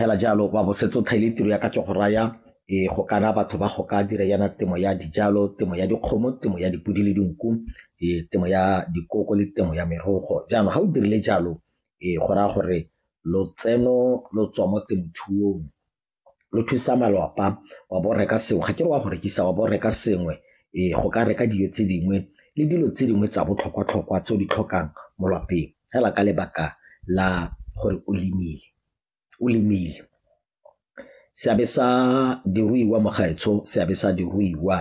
fela jalo wa bo setse o thaile tiro ya ka ke go raya e go kana batho ba go ka dira yana temo ya dijalo temo ya dikgomo temo ya dipodi le dinku e temo ya dikoko le temo ya merogo jaanong ga o dirile jalo e go raya gore lotseno lo tswa mo temothuong lo thusa malwapa wa bo reka sengwe ga ke re wa go rekisa wa bo reka sengwe e go ka reka dijo tse dingwe le dilo tse dingwe tsa botlhokwa-tlhokwa tse o di tlhokang mo lwapeng fela ka lebaka la gore o lemile o lemile seabe sa diruiwa mo gaetsho seabe sa diruiwa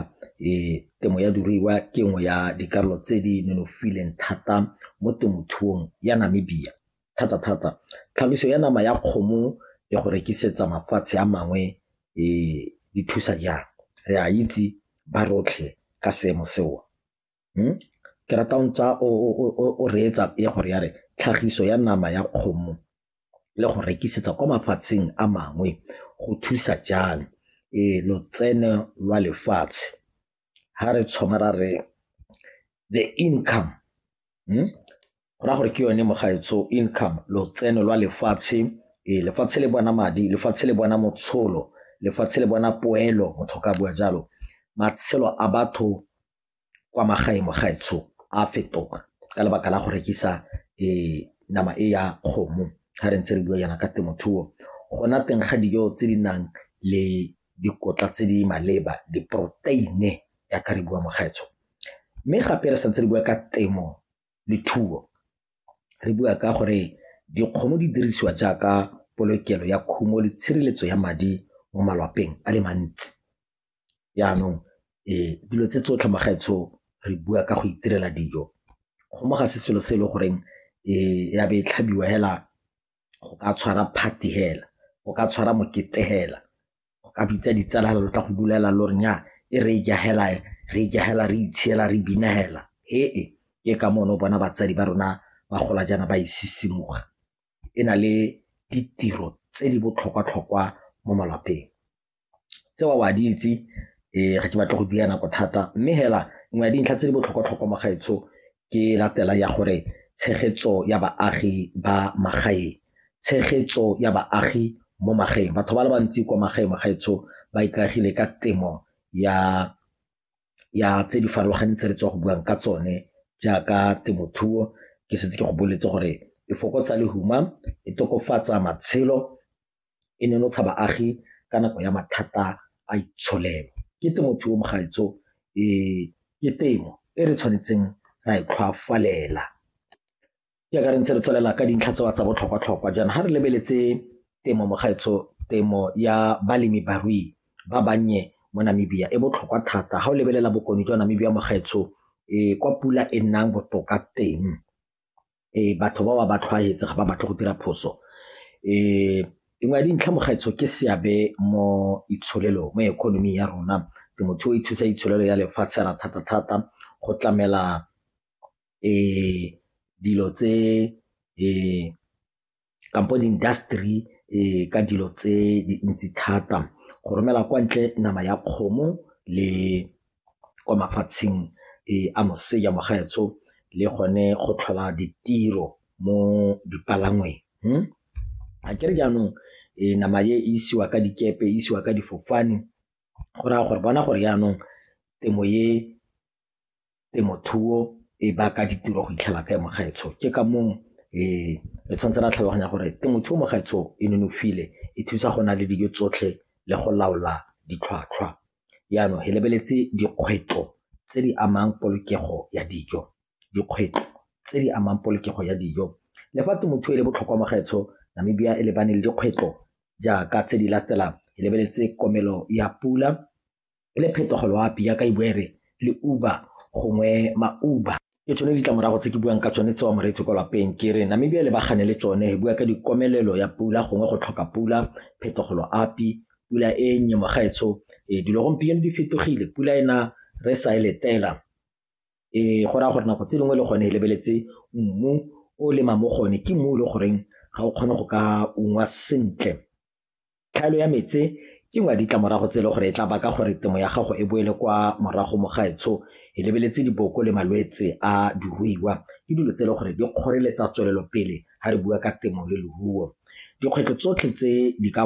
um temo ya diruiwa ke nngwe ya dikarolo tse di nonofileng thata mo temothuong ya Namibia thata-thata tlhagiso ya nama ya kgomo le go rekisetsa mafatshe a mangwe um di thusa jang re a itse ba rotlhe ka seemo seo. Ke rata o ntse o reetsa pele gore ya re tlhagiso ya nama ya kgomo le go rekisetsa kwa mafatsheng a mangwe go thusa jang lotseno lwa lefatshe. Ga re thoma ra re the income go raya gore ke yone mo gaetsho income, lotseno lwa lefatshe, lefatshe le bona madi, lefatshe le bona motsholo, lefatshe le bona poelo motho ka bua jalo, matshelo a batho kwa magaeng mo gaetsho a fetoga ka lebaka la go rekisa nama e ya kgomo ga re ntse re bua jaana ka temothuo go na teng ga dijo tse di nang le dikotla tse di maleba diporoteine jaaka re bua mo gaetsho mme gape re santse re bua ka temo le thuo re bua ka gore dikgomo di dirisiwa jaaka polokelo ya khumo le tshireletso ya madi mo malwapeng a le mantsi. Jaanong dilo tse tsotlhe magaetsho re bua ka go itirela dijo, kgomo ga se selo se e le goreng ya be e tlhabiwa fela go ka tshwara party fela, go ka tshwara mokete fela, go ka bitsa ditsala fela lo tla go bula fela lo re nyaa e re e ja fela e, re e ja fela re itshela re bina fela ke ka moo ne o bona batsadi ba rona ba gola jaana ba e sisimuga e na le ditiro tse di botlhokwa-tlhokwa mo malapeng. Tseo wa di itse, ee ga ke batle go dira nako thata mme fela nngwe ya dintlha tse di botlhokwa-tlhokwa mo gaetsho ke e latelang ya gore tshegetso ya baagi ba magaeng, tshegetso ya baagi mo magaeng. Batho ba le bantsi kwa magaeng mo gaetsho ba ikaegile ka temo ya tse di farologaneng tse re tswa go buang ka tsone jaaka temothuo, ke setse ke go boletse gore e fokotsa lehuma, e tokafatsa matshelo e nonotsha baagi ka nako ya mathata a itsholelo. Ke temothuo mogaetsho ke temo e re tshwanetseng ra e tlhwafalela jaaka re ntse re tswelela ka dintlha tse wa tsa botlhokwa-tlhokwa jaana ga re lebeletse temo mogaetsho temo ya balemi barui ba bannye mo Namibia e botlhokwa thata ga o lebelela bokone jwa Namibia mogaetsho kwa pula e nnang botoka teng. um batho ba ba ba tlhwaetse ga ba batle go dira phoso um nngwe ya dintlha mogaetsho ke seabe mo itsholelo mo economy ya rona temothuo e thusa itsholelo ya lefatshe ra thata-thata go tlamela um dilo tse um kampo di-industry um ka dilo tse dintsi thata go romela kwa ntle nama ya kgomo le kwa mafatsheng um a moseja mogaetsho le gone go tlhola ditiro mo dipalangweng hmm? a kere jaanong um nama e isiwa ka dikepe e isiwa ka difofane go raya gore bona gore jaanong temo e temothuo e baka ditiro go itlhela kae mo gaetsho ke ka moo re tshwanetse ra tlhaloganya gore temothuo mo gaetsho e nonofile e thusa go na le dijo tsotlhe le go laola ditlhwatlhwa jaanong re lebeletse dikgwetlho tse di amang polokego ya dijo dikgwetlho tse di amang polokego ya dijo le fa temothuo e le botlhokwa mo gaetsho Namibia e lebane le dikgwetlho jaaka tse di latelang e lebeletse komelo ya pula e le phetogo loapi ya ka e bua e re le Uber gongwe ma-Uber. Ke tsone ditlamorago tse ke buang ka tsone tsewa moreetsi kwa lapeng ke re Namibia le bagane le tsone e bua ka dikomelelo ya pula gongwe go tlhoka pula phetogo loapi pula e nnye mogaetsho e dilo gompieno di fetogile pula ena re sa e letela e go raya gore nako tse dingwe le gone e lebeletse mmu o lema mo gone ke mmu o le goreng ga o kgone go ka ungwa sentle Tlhaelo ya metse ke nngwe ya ditlamorago tse e le gore e tla baka gore temo ya gago e boele kwa morago mo gaetsho e lebeletse diboko le malwetse a diruiwa ke dilo tse e le gore di kgoreletsa tswelelopele ga re bua ka temo le leruo. Dikgwetlho tsotlhe tse di ka